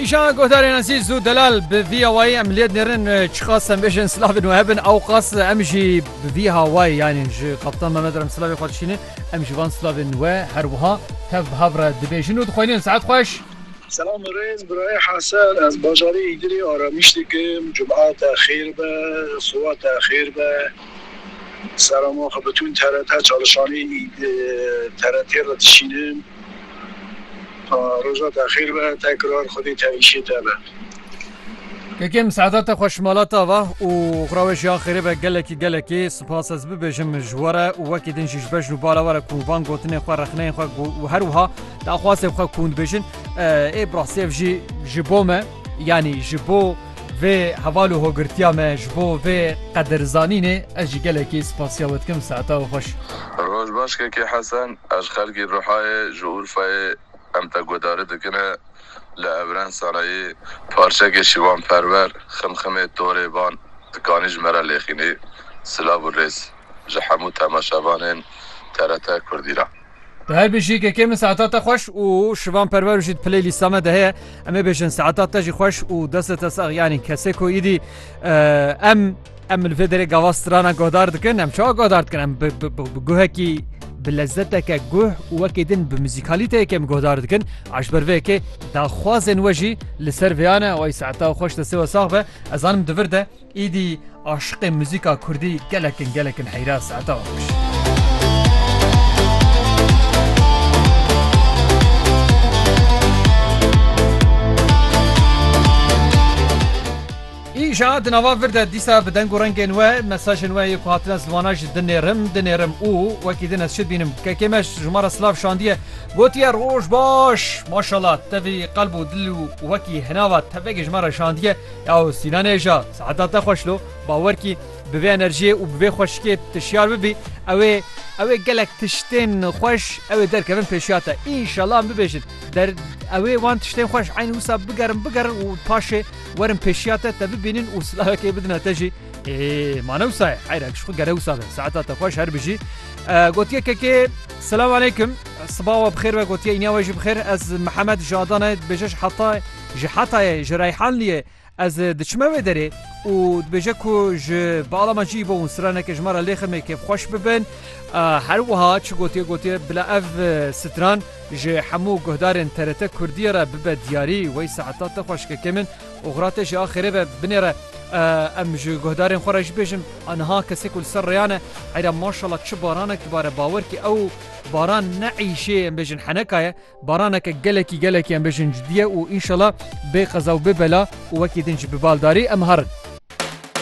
Îşan Godarê Nezîz û Delal bi vî awayî em lêd nêrin çiqas em bêjin silavên we hebin ew qas em jî bi vî hawayî yanî ji Kaptan Mehmed re em silavê xwe dişînin em ji van silavên we her wiha tev bi hev re dibêjin û dixwînin saet xweş. Selam û rêz birayê Hesen ez bajarê Îdirê aramîş dikim cumate xêr be sowate xêr be. Serama xwe bi tund TRT çalişanê TRT re dişînim. Roja te xêr be tekrar xwedê tevîşê te be. Kekem seadate xweş mala ta va û xwra wê jî a xêrê be gelekî gelekî sipas ez bibêjim ji we re û wekî din jî ji bejn û bala we re ku van gotinên xwe rexneyên xwe û her wiha daxwazên xwe ku hûn dibêjin ê bi rastî ev jî ji bo me yanî ji bo Vê heval û hogirtiya me ji bo vê qedirzanînê ez jî gelekî spasiya we dikim saeta we xweş. Roj baş Kekê Hesen, ez xelkî Rihayê ji Urfayê em te guhdarî dikine li Evren Sarayî parçekê Şivan Perwer Ximximê Torê Van dikanî ji me re lêxînî? Silav û rêz ji hemû temaşevanên TRT Kurdî re. Te her bêjî KK min saeta te xweş û şivan perwer û jî di piley lîsta me de heye. Em ê bêjin saeta te jî xweş û deste te sax yanî kesê ku îdî em em li vê derê gava strana guhdar dikin em çawa guhdar dikin em bi guhekî bi lezzeteke guh û wekê din bi muzîkalîteyeke em guhdar dikin eş ber vê yekê daxwazên we jî li ser vêyane way saeta xweş destê we sax be ezanim divir de Êdî aşiqê muzîka kurdî gelek in gelek in heyra Seeta Akkuş. Îja di nava vir de dîsa bi deng û rengên we mesajên we yê ku hatin ez li wana jî dinêrim dinêrim û wekî din ez çi dibînim kekê me ji ma re silav şandiye gotiye roj baş maşallah tevî qelb û dil û wekî hinava tevegê ji me re şandiye Yaw Sînan Êja, seheta te xweş lo. Bawer kî bi vê enerjiyê û bi vê xweşikê tu şiyar bibî, ew ê ew ê gelek tiştên xweş ew ê derkevin pêşiya te. Înşallah em bibêjin der ew ê wan tiştên xweş eynî wisa bigerin bigerin û paşê werin pêşiya te, te bibînin û silavekê bidine te jî. Ê ma ne wisa ye. Heyra ji xwe gere wisa be. Seheta te xweş her bijî. Gotiye kekê Selam aleykum. Sibawa bi xêr ve gotiye îniya we jî bi xêr. Ez Mihemed ji Adanayê dibêje ji Hatayê. Ji Hetayê, ji Reyhanliyê ez diçime wê derê û dibêje ku ji balama cî bo û straneke ji me re lêxime kêfxweş bibin. Her wiha çi gotiye gotiye bila ev stran ji hemû guhdarên TRT Kurdiyê re bibe diyarî. Wey saeta te xweş keke min. Oxira te jî a xêrê be binêre. Em ji guhdarên xwe re jî bêjin a niha kesê ku li ser rêyan e heyra maşala çi baranek dibare bawer kî ew baran ne îşê em bêjin heneka ye. Baraneke gelekî gelekî em bêjin cidî ye û înşela bê qeza û bê bela û wekî din jî bi baldarî em harin.